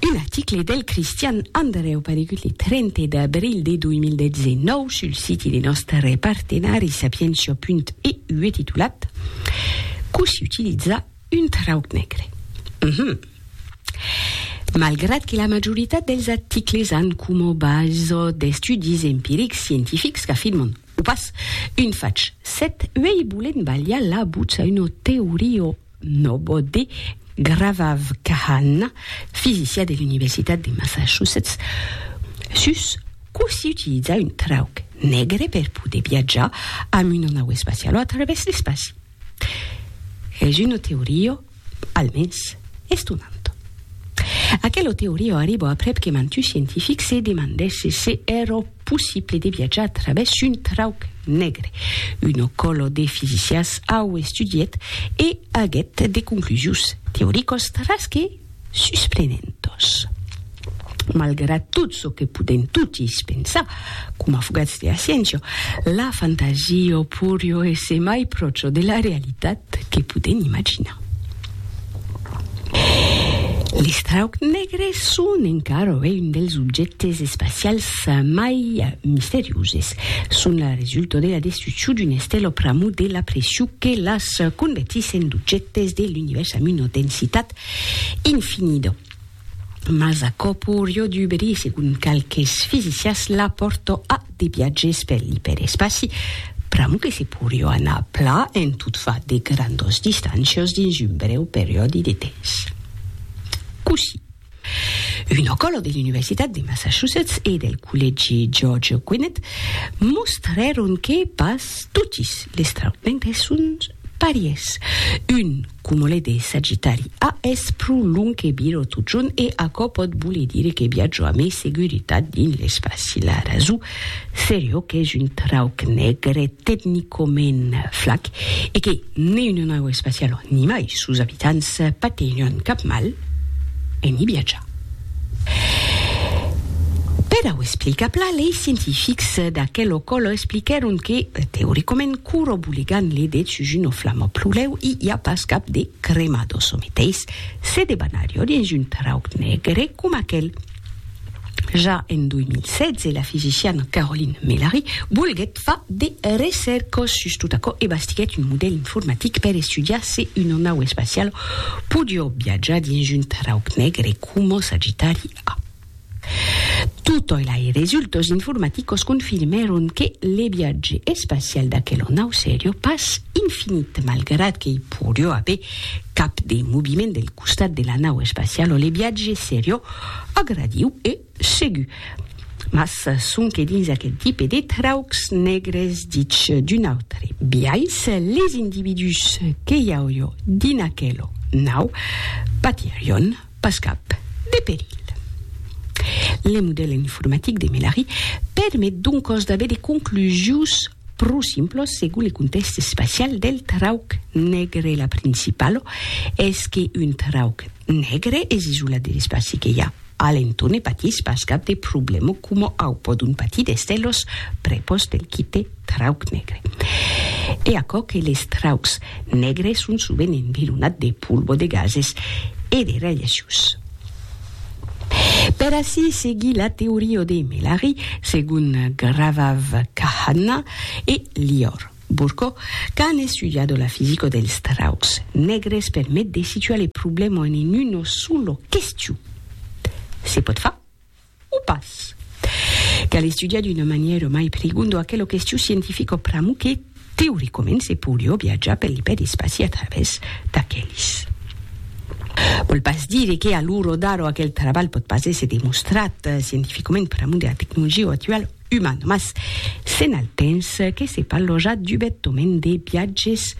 Un article del Cristian Andrèu paregut le 30 d'abril de 2019 sul siti de nòstre partenari sapientia.e ue titulat Cossí utilizar un trauc negre. Uh -huh. Malgrat que la majoritat dels articles an coma base d'estudis empirics scientifics qu'afirman, o pas, un fach, s'eth uei volent balhar la butz a una teoria Nobody Gravavkhanna, fisicia de l'Universitat de Massachusetts, sus cò si utiliza un trauc negre per poder viatjar amb una nau espaciala a travèrs l'espaci. Es una teoria, almens, estonanta. Aquela teoria arriba aprèp que mantuts scientifics se demandèsse se èra possible de viatjar a travès un trauc negre. Uno colo de fisicias au estudiet e aguet de conclusions teoricos tras que susprenentos. Malgrat tot ço que podem totis pensar, coma fogats de Asciencio, la fantasia o purio es emai pròcho de la realitat que podem imaginar. Les traucs negres son encara avui un dels objèctes espacials mai misterioses. Son la resulta de la destruccion d'una estela o pr'amor de la pression que las convertís en d'objèctes de l'univèrs amb una densitat infinida. Mas aquò porió duberir, segon qualques fisicians, la pòrta a de viatges per l'iperespaci, pr'amor que se porió anar pla en tot far de grandas distàncias dins un brèu periòdi de temps. Cossí, una còla de l'Universitat de Massachusetts e del Collègi George Gwinnett mostrèron que pas totis les trautments son Pàries. Un cumole de Sagitari A es pro long que bir o totjorn e aquò pòt voler dire que viatjo a mai seguritat dins l'espaci. La rason serio qu'es un trauc negre tecnicament flac e que ne una nau espaciala ni mai sos abitants patenhon cap mal en i viatjar. Per au explicar plan, lei scientifics d'aquel ocòlo expliquèron que, teoricament, curo boligant le det sus un oflam o plulèu, i i a pas cap de crema do çò meteis, se debanarió dins un trauc negre com aquel. Ja en 2016, la fisician Caroline Melary volguèt Fa de recèrcas sus tot aquò e bastiguèt un modèl informatic per estudiar se una nau espaciala podiá viatjar dins un trauc negre e coma s'agitariá. Totòi lai resultas informaticos confirmèron que le viatge espacial d'aquela nau serió pas infinit, malgrat que i podiá aver cap de moviment del costat de la nau espaciala, le viatge serió agradiu e Segur. Mas sonque dins aquel tipe de traucs negres ditz d'un autre biais, les individús que i auió dins aquelo nau patirión pas cap de perilh. Le modèl informatic de Melari permet doncòs d'aver de conclusius pro simplos segon le contèxt espacial del trauc negre. La principalo es que un trauc negre es isolat de l'espaci que i a. Alento ne patís pas cap de problema coma au pòdon patir d'èster los prepòs del quite trauc negre. E aquò que les traucs negres son sovent environats de polvo de gases e de radiacions. Per ací seguir la teoria de Melari, segon Gravav Kahana e Lior. Burko, qu'a an estudiado la fisico dels traucs negres per met de situar le problema en en uno sulo question, se pòt far o pas? Cal estudiar d'una manièra mai prigondo aquela question scientifica pr'amor que, teoricament, se poiriá viatjar per l'ipèrespaci a travèrs d'aquelis. Vòl pas dire que, a l'ora d'ara, aquel trabalh pòt pas èsser demostrat scientificament pr'amor de la tecnologia actuala. uman, mas s'en al temps que se parlò ja dubètament de viatges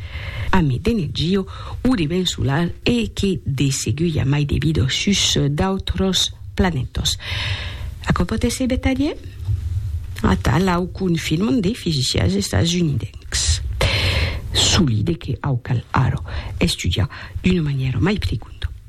a Medenegio o de Bensular e que de segur i a mai de vida sus d'autros planètas. Aquò pòt èsser vertadièr? Atal, au confirman de fisicians estasunidèncs. Solide que au cal ara estudiar d'una manièra mai prigonda.